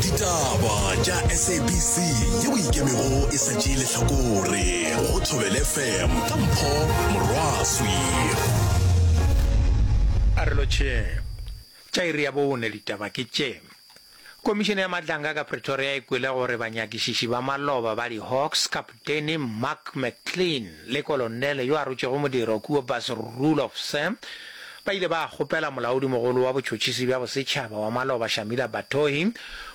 ditaba tša sabc yeo ikemego e sa tšee lehlakore go thobele fm ka mpho morwaswi a re lotšheng tša iri ya bone ditaba ke tše komišene ya matlanga ka pretoria e kwele gore banyakišiši ba maloba ba di-hawks ka Denny Mark McClean le kolonele yo a rotšego modiro kua Bas Roelof Sam ba ile ba kgopela molaodimogolo wa botšhotšhisi bja bosetšhaba wa maloba Shamila Batohi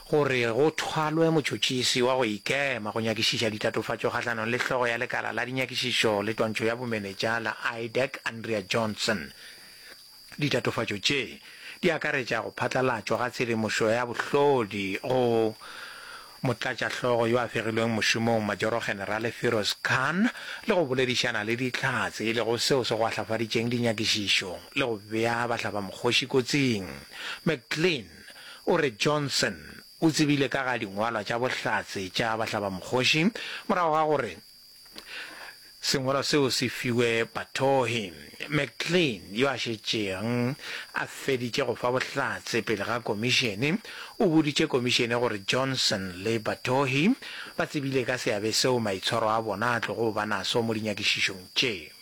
gore go thwalwe motšhotšhisi wa go ikema go nyakišiša ditatofatšo kgahlanong le hlogo ya lekala la dinyakišišo le twantšho ya bomenetša la IDEC Andrea Johnson. Ditatofatšo tše di akaretša go phatlalatšwa ga tshedimošo ya bohlodi go Motlatšahlogo yo a fegilweng mošomong Majoro-Generale Firoz Khan le go boledišana le Dihlatse e lego seo se gwahlafaditšeng dinyakišišo le go bea bahlabamokgoši kotsing. McGlynn o re Johnson o tsebile ka ga dingwalwa tša bohlatse tša bahlabamokgoši morago ga gore Sengwalwa seo se fiwe Batohi. McLean, yo a šetšeng a feditše go fa bohlatse pele ga komišene, o boditše komišene gore Johnson le Batohi ba tsebile ka seabe seo maitshwaro a bona a tlogo ba naso mo dinyakišišong tše.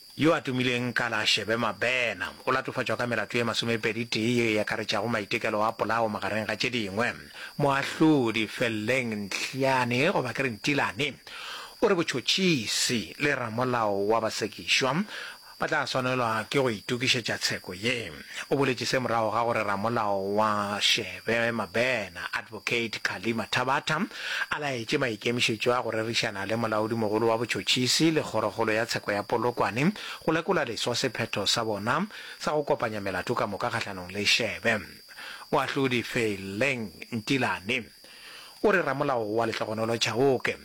Yo a tumileng ka la Shebe Mabena o latofatšwa ka melato ye masomepedi-tee yeo e akaretšago maitekelo a polao magareng ga tše dingwe. Moahlodi Felleng Ntlhiane goba ke re Ntilane o re botšhotšhisi le ramolao wa basekišwa ba tla swanelwa ke go itokišetša tsheko ye. o boletše se morago ga gore ramolao wa Shebe Mabena, Advocate Kali Mathabatha, a laetše maikemišetšo a go rerišana le molaodimogolo wa botšhotšhisi le kgorokgolo ya tsheko ya Polokwane go lekola leswa sephetho sa bona sa go kopanya melato ka moka kgahlanong le Shebe. Moahlodi Feeleng Ntilane o re ramolao wa lehlogonolo Chauke,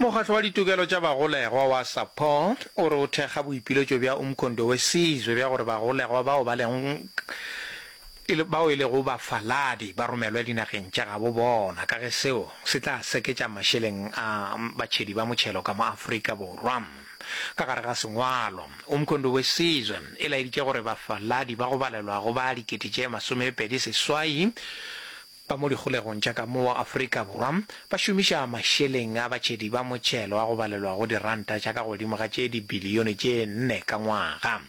Mokgatlo wa Ditokelo tša Bagolegwa wa Support o re o thekga boipiletšo bja Umkhondo Wesizwe bja gore bagolegwa bao ba leng bao e lego bafaladi ba romelwe dinageng tša gabo bona ka ge seo se tla seketša mašeleng a batšhedi ba motšhelo ka mo Afrika Borwa. Ka gare ga sengwalo, Umkhonto we Sizwe e laeditše gore bafaladi ba go balelwa go ba dikete tše masomepedi seswai ba mo dikgolegong tša ka mo Afrika Borwa ba šomiša mašeleng a batšhedi ba motšhelo a go balelwa go diranta tša ka godimo ga tše dibilione tše nne ka ngwaga.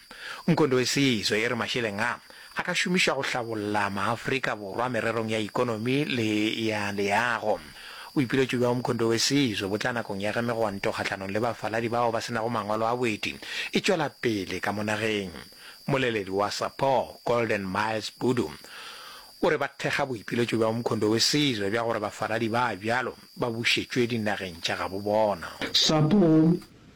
Umkhonto we Sizwe e re mašeleng a a ka šomišwa go hlabolla maAfrika Borwa mererong ya ikonomi le ya leago. Boipiletšo bja Umkhonto we Sizwe bo tla nakong ya ge megwanto kgahlanong le bafaladi bao ba se nago mangwalo a boeti e tšwela pele ka mo nageng. Mmoleledi wa SAPO, Golden Miles Budu, o re ba thekga boipiletšo bja Umkhonto we Sizwe bja gore bafaladi ba bjalo ba bušetšwe dinageng tša gabo bona. SAPO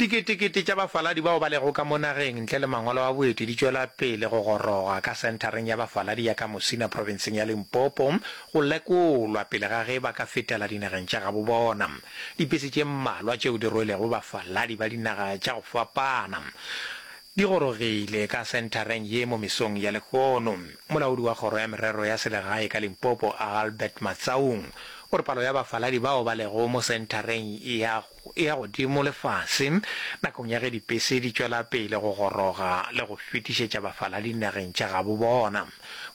Diketekete tša bafaladi bao ba lego ka mo nageng ntle le mangwalo a boeti di tšwela pele go goroga ka Senthareng ya Bafaladi ya ka Musina profenseng ya Limpopo go lekolwa pele ga ge ba ka fetela dinageng tša gabo bona. Dipese tše mmalwa tšeo di rwelego bafaladi ba dinaga tša go fapana di gorogile ka senthareng ye mo mesong ya lehono. Molaodi wa Kgoro ya Merero ya Selegae ka Limpopo, Albert Matsaung, o re palo ya bafaladi bao ba lego mo senthareng ya go e-ya godimo le fase nakong ya ge dipese di tšwela pele go goroga le go fetišetša bafaladi dinageng tša gabo bona.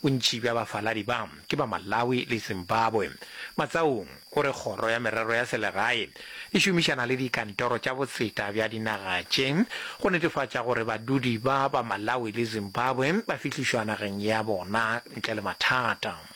Bontši bja bafaladi ba ke ba Malawi le Zimbabwe. Matsaung o re kgoro ya merero ya selegae e šomišana le dikantoro tša botseta bja dinaga tše go netefatša gore badudi ba ba Malawi le Zimbabwe ba fihlišwa nageng ya bona ntle le mathata.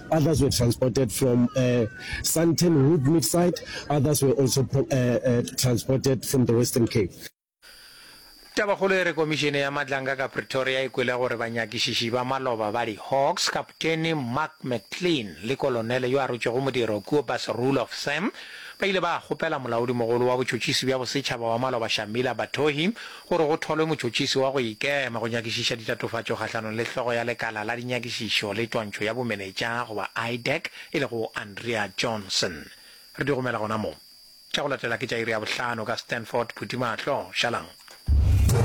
Others were transported from Sandton Wood Meat Site, others were also transported from the Western Cape. Tabakgolo e re Komišene ya Matlanka ka Pretoria e kwele gore banyakišiši ba maloba ba di-Hawks, Kapteni Mark McLean le Kolonele yo a rotšwego modiro Kobus Roelof Sam, ba ile ba kgopela Molaodimogolo wa Botšhotšhisi bja Bosetšhaba wa Maloba Shamila Batohi gore go tholwe motšhotšhisi wa go ikema go nyakišiša ditatofatšo kgahlanong le hlogo ya Lekala la Dinyakišišo le Twantšho ya Bomenetša goba IDAC e lego Andrea Johnson. Re di romela gona mo. Tša go latela ke tša iri ya bohlano ka Stanford Phuthimahlo, Šalang.